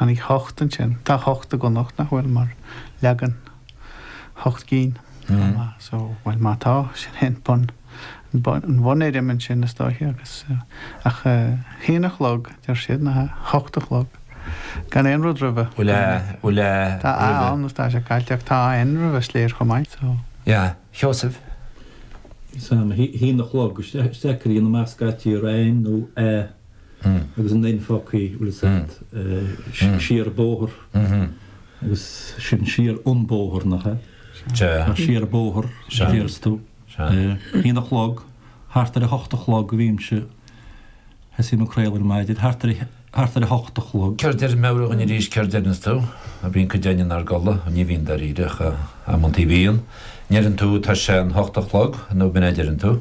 An í hocht ansin? Tá hocht i gConnachta nach bhfuil mar leagan hocht gcinn chomh maith so bhuel má tá sin é an bun an bhunfhoirm ansin is dóiche agus ach a haon a chlog deir siad ná hocht a chlog gan aon rud roimhe. Bhuel a bhuel a roimhe. Tá a ann is tá sé caillte ach tá n roimhe is léir chomh maith so. Yeah. Sheosaimh? Sam, a haon a chlog, is deacair í ina measc a aití ar aon nó a. agus an N-fhocaii Lizard siar bóthar agus sin siar an bóthar nach ea? Nach siar bóthar a dhéarfas tú? Bhíonn a chlog, thart ar a hocht a chlog a bhímse, thosaím ag craoladh ar maidin, thart ar thart ar a hocht a chlog. Céard a deir Meabhraigh dhúinn arís céard a deireanns tú? Bíonn cuid againne inár gcodladh, ní bhíonn dáiríre ach amantaí bhíonn. An ndeireann tú tá sé an hocht a chlog nó ab in é a deireann tú?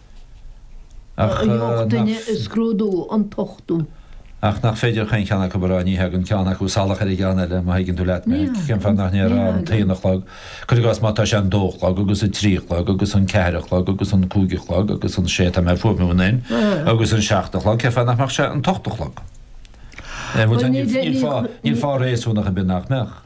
ach nach féidir chaon cheann acu a rá, ní thagann ceann acu salach ar an gceann eile, má thuigeann tú leat mé, cén fáth nach ndéarfá an t-aon a chlog, cuir i gcás má tá sé an dó a chlog agus an trí a chlog agus an ceathair a chlog agus an cúig a chlog agus an sé, tá mé ag fuaimniú an n, agus an seacht a chlog, cén fáth nach mbeadh sé an t-ocht a chlog? Níl fáth réasúnach ar bith nach mbeadh.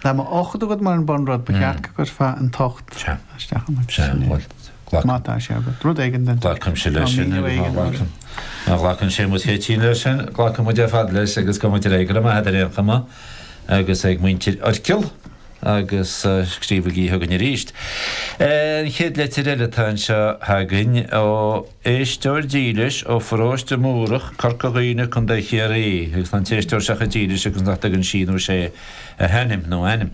Má tá ocht agat mar an bunrud, ba cheart go gcuirfeá an t-ocht isteach amuigh de sin é. Glac. Má tá sé agat. Rud éigin den duine. Glacaimse leis sin. Míniú éigin. Ghlacam. Ná glacann sé muid fé tinn leis sin. Glacfaidh muid ar fad leis agus gabhfaidh muid ar aghaidh go raibh maith agat ar aon chuma agus ag muintir Oirchill agus scríobhaigí chugainn arís. An chéad leitir eile atá anseo againn ó. Éisteoir dílis ó Pharóiste Múrach, Corca Dhuibhne, Co. Chiarraí, agus tá an t-éisteoir seo chomh dílis agus nach dtugann sí nó sé a hainm nó ainm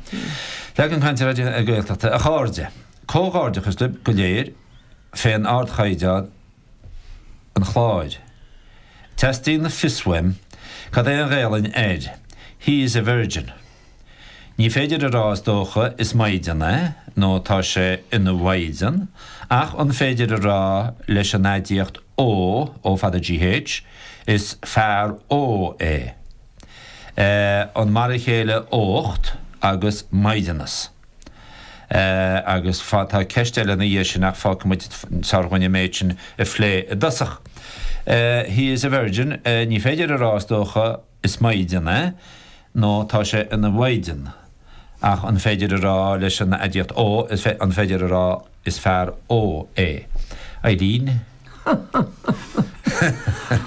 Leagan Cainte Raidió na Gaeltachta. A chairde. Comhghairdeachas libh go léir fén ardchaighdeán an chláir. Teastaíonn fios uaim cad é an Ghaelainn air. He is a virgin. Ní féidir a rá is dócha is maighdean é nó tá sé ina mhaighdean ach an féidir a rá leis an aidiacht ógh, ó fada gh, is fear ógh é. Eh, an mar a chéile ócht agus maighdeanas? Eh, agus fá, tá ceist eile ina dhiaidh sin ach fágfaidh muid is fearr dhúinn an méid sin a phlé i dtosach. Eh, he is a virgin, eh, ní féidir a rá is dócha, Is maighdean é, nó tá sé ina mhaighdean. Ach an féidir a rá leis an aidiacht ógh, an féidir a rá is fear ógh é? Ailín,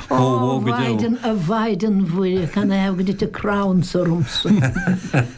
Ó, a mhaighdean, a mhaighdean Mhuire, can I have a bit of crowns ormsa?